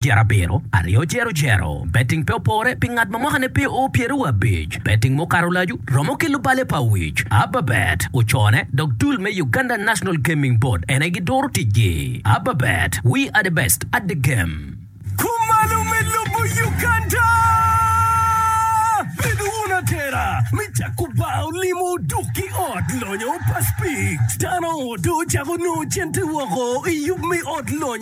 Tyer abiro, aryo jero jero. Betting pe opore pi ngat ma mwakane pe oo pyeraryo abic. Betting mukato lacu romo ki lubale pa wic. Ababet ocone dok dul me Uganda National Gaming Board ene giduro ticgi. Ababet, we are the best at the game. Kumalo me lobo Uganda! Bedo wun atera me cako bar olimo dok ki ot lonyo pa Speed. Dano dong ocako nongo cente woko i yub me ot lonyo.